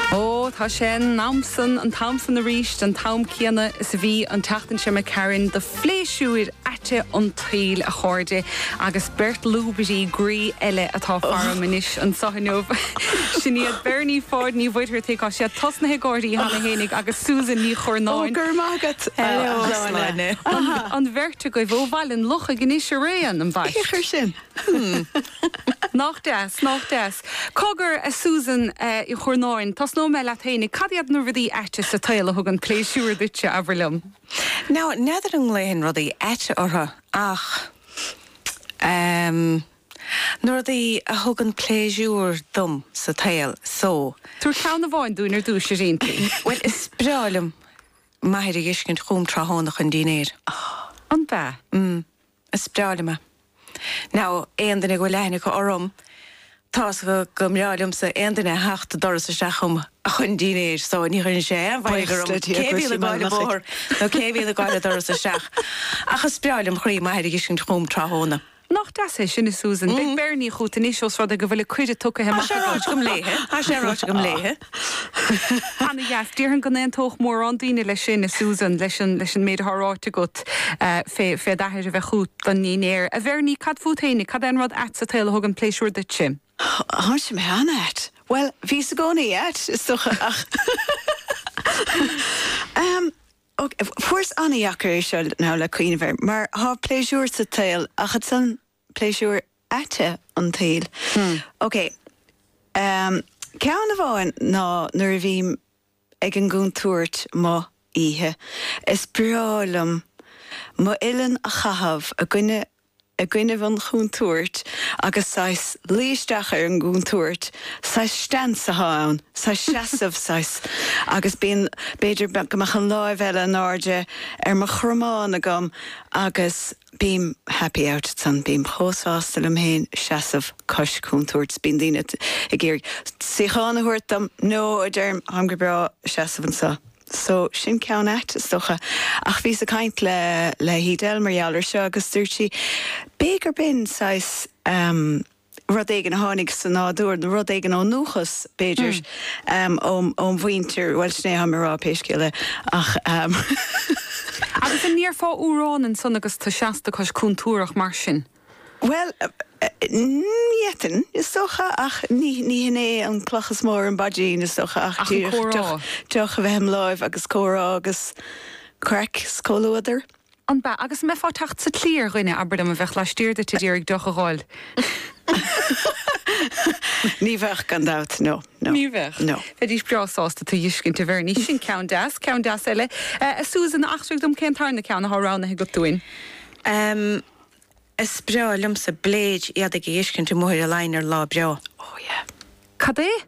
Ó, tá sé in am san, an t-am san arís, an t-am céanna is a bhí an tseachtain seo, imigh tharainn, do phléisiúir aite an tsaoil, a chairde, agus beirt lúbairí groí eile atá faram anois anseo inniu. Sin iad Bernie Pháid Ní Mhuircheartaigh, tá siad tosnaithe ag gáirí cheana fhéinig, agus Susan Ní Churnáin. Ó, go raibh maith agat, a Shláine. An bheirt agaibh ó Bhaile an Lochaigh anois araon, ambaist. Cé a chuir sin? Hmm. Nach deas, nach deas. Cogar, a Susan Ní Churnáin, tosnóidh mé leat fhéinig. Cad iad na rudaí aite sa tsaol a thugann pléisiúr duitse, abair liom? Now, n'fheadar an nglaofainn rudaí aite orthu ach ehm. na rudaí a thugann pléisiúr dom sa tsaol so. Tabhair ceann amháin dúinn ar dtús. Cinnte. Bhuel, is breá liom m'athair a dh'fheiscint chugam tráthnóna chun dinnéir. Oh. Ab ea? Mm. Is breá liom é. Now, aon duine go bhfuil aithne acu orm, tá's acu go mbreá liomsa aon duine a theacht an doras isteach chugam a chun dinnéir, so ní chuireann sé aon mhairg orm cé a bhíonn ag gabháil an bóthar nó cé a bhíonn ag gabháil an doras isteach. Ach is breá lem chroí m'athair a dh'fheiscint chugam tráthnóna. Nach deas é sin, a Susan? Beidh Bernie chughat anois ós rud é go bhfuil an cuireadh tugtha amach agat. Tá sé ráite agam léithe. Ana-dheas. Déarfainn go n-aontódh mórán daoine leis sin, a Susan, leis an leis an méid atá ráite agat fé fé d'athair a bheith chút don ndinnéar. A Bhernie, cad fút fhéinig? Cad é an rud ait sa tsaol a thugann pléisiúr duitse? Thá sé mé an-ait. Bhuel, bhíos i gcónaí ait, is docha, ach Ahem, ok, fuaireas ana-dheacair é seo, now, le cuimhneamh air, mar thá pléisiúr sa tsaol, ach ansan. pléisiúir aite an tsaoil. OK. Ceann amháin ná nuair a bhím ag an gcúntúirt amuigh oíche, is breá liom m'uillinn a chaitheamh i gcoinnibh an chúntúirt agus saghas luí isteach ar an gcúntúirt, saghas stance athá ann, saghas seasamh, saghas, agus bíonn, b'fhéidir go mbeadh an lámh eile in airde ar mo chromán agam agus. Bím happy out ansan, bím chomh sásta liom féin seasamh cois cúntúirt. Bíonn daoine ag iarraidh suíochán a thabhairt dom, no, a deirim, táim go breá seasamh anseo. So, sin ceann ait, is dócha. Ach bhíos ag caint le, le hEdel mar gheall air seo agus dúirt sí, b'fhé gur b'in saghas, eh, rud éigin a tháinig sa nádúr, nó rud éigin ón ndúchas, b'fhéidir, óm mhuintir, bhuel, sin é atháim a rá, pé scéal é, ach. Agus an ndéarfá amhrán ansan agus tú seasta cois cúntúrach mar sin? Bhuel, d'fhéadfainn, is dócha, ach ní hin é an cloch is mó ar an bpaidrín, is dócha, ach díreach deoch a bheith im láimh agus comhrá agus craic 's comhluadar. An ab ea, agus an mbeifeá ag teacht sa tslí ar dhuine, abair liom, a bheadh laistiar duit a d'iarraidh deoch a dh'fháil? Ní bheadh, gan dabht. No, no. Ní bheadh. No. Bheidís breá sásta tú a fheiscint, a Bhernie. Sin ceann deas. Ceann deas eile. A Susan, eachtraigh dom cén tarna ceann athá roghnaithe agat dúinn. Is breá liomsa bleid éadaigh a fheiscint amuigh ar an line ar lá breá. Oh yeah. Cad é?